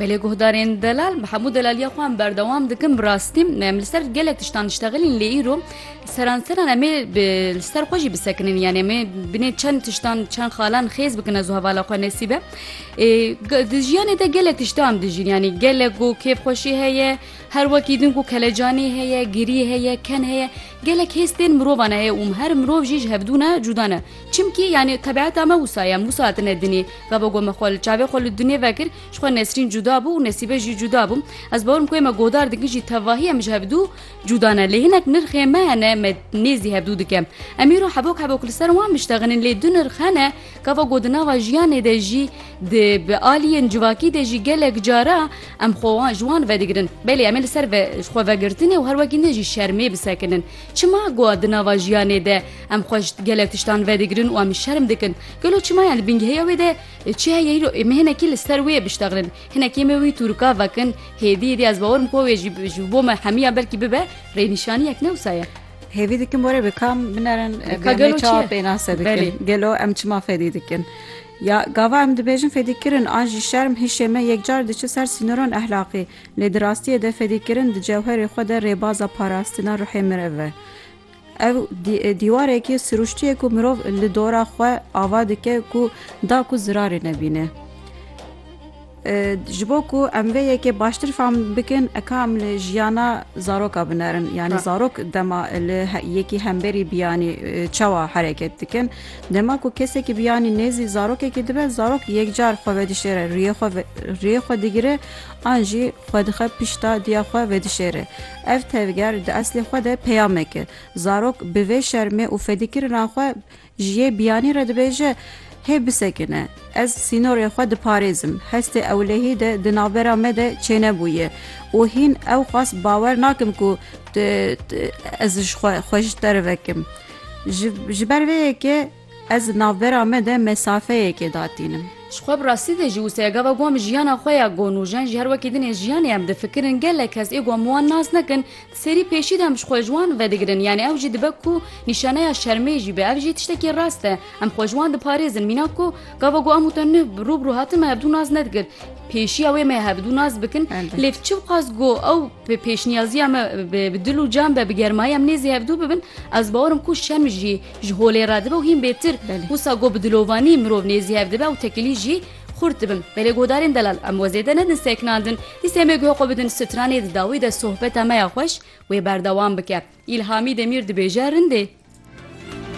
Belê guhdarên delal bi hemû delaliya xwe em berdewam dikin bi rastî me em li ser gelek tiştan diştexilîn lê îro seranseran em ê li ser xwe jî bisekinin yan em ê binê çend tiştan çend xalan xêz bikin ez hevala xwe nesîbe di jiyanê de gelek tiştan dijîn yanî gelek ku kêfxweşî heye her wekî din ku kelecanî heye girî heye ken heye gelek hêz tên mirovan heye û her mirov jî ji hevdû ne cûda ne Çimkî yanî tebiata me wisa ye, em wisa hatine dinê. Gava ku me xwe li çavê xwe li dinê vekir, ji xwe Nesrîn cuda bû û Nesîbe jî cuda bû. Ez bawer im ku me godar dikin jî tevahî em ji hevdu cuda ne. Lê hinek nirxên me hene me nêzî hevdu dikim. Em îro hebok hebok li ser wan miştexînin lê du nirx hene gava ku di nava jiyanê de jî di bi aliyên civakî de jî gelek cara em xwe wan ji wan vedigirin. Belê em ê li ser xwe vegirtinê û her wekî din jî şermê bisekinin. Çima ku di nava jiyanê de Em xwe ji gelek tiştan vedigirin û em şerm dikin. Gelo çima ya li bingehêya wê de çi heye îro ê me hinekî li ser wê biştexnin. Hinekî me wî tûrika vekin. Hêdî hêdî ez bawer im ku wê jî ji bo me hemiya belkî bibe rênîşaniyek ne wisa ye. Hêvî dikim were bi kam binerin Ka gelo çi ye? pênase dikin. Gelo em çima fedî dikin? Ya gava em dibêjin fedîkirin an jî şerm hişê me yekcar diçe ser sînoran ehlaqî. Lê di rastiyê de fedîkirin di cewherê xwe de rêbaza parastina ruhê mirev e. Ev dîwarekî sirûştiyê ku mirov li dora xwe ava dike ku da ku zirarê nebîne. Ji bo ku em vê yekê baştir fam bikin eka em li jiyana zaroka binerin yanî zarok dema li yekî hemberî biyanî çawa hereket dikin. Dema ku kesekî biyanî nêzî zarokekî dibe zarok yekcar xwe vedişêre riyê xwe riyê xwe digire an jî xwe dixe pişta diya xwe vedişêre. Ev tevger di eslê xwe de peyamek e. Zarok bi vê şermê û fedîkirina xwe ji yê biyanî re dibêje, Hê bisekine, ez sînorê xwe diparêzim, hestê ewlehî de di navbera me de çênebûye û hîn ewqas bawer nakim ku ez ji xwe xwe ji te re vekim. Ji ji ber vê yekê. Ez di navbera me de mesafeyekê datînim. Ji xwe bi rastî de jî wisa ye gava got min jiyana xwe ya got nûjen jî her wekî din ê jiyanê em difikirin gelek kes ê got min wan nas nekin di serî pêşî de em ji xwe ji wan vedigirin yanî ew jî dibe ku nîşaneya şermê jî be ev jî tiştekî rast e em xwe ji wan diparêzin mîna ku gava got em û te nuh bi rû bi rû hatin me hebdû nas nedikir pêşiya wê me hebdû nas bikin lêv çi bixwaz got ew bi pêşniyaziya me bi dil û can be bi germayî em nêzî hevdû bibin ez bawerim ku şerm jî Ji holê re dibe û hîn bêtir. Wisa got bi dilovanî mirov nêzî hev dibe û tekilî jî xurt dibin. Belê godarên delal em we zêde nedin seknandin. Dîs em ê guhe xwe bidin stranê di dawî de sohbeta me ya xweş wê berdewam bike. Îlhamî Demîr dibêje rindê.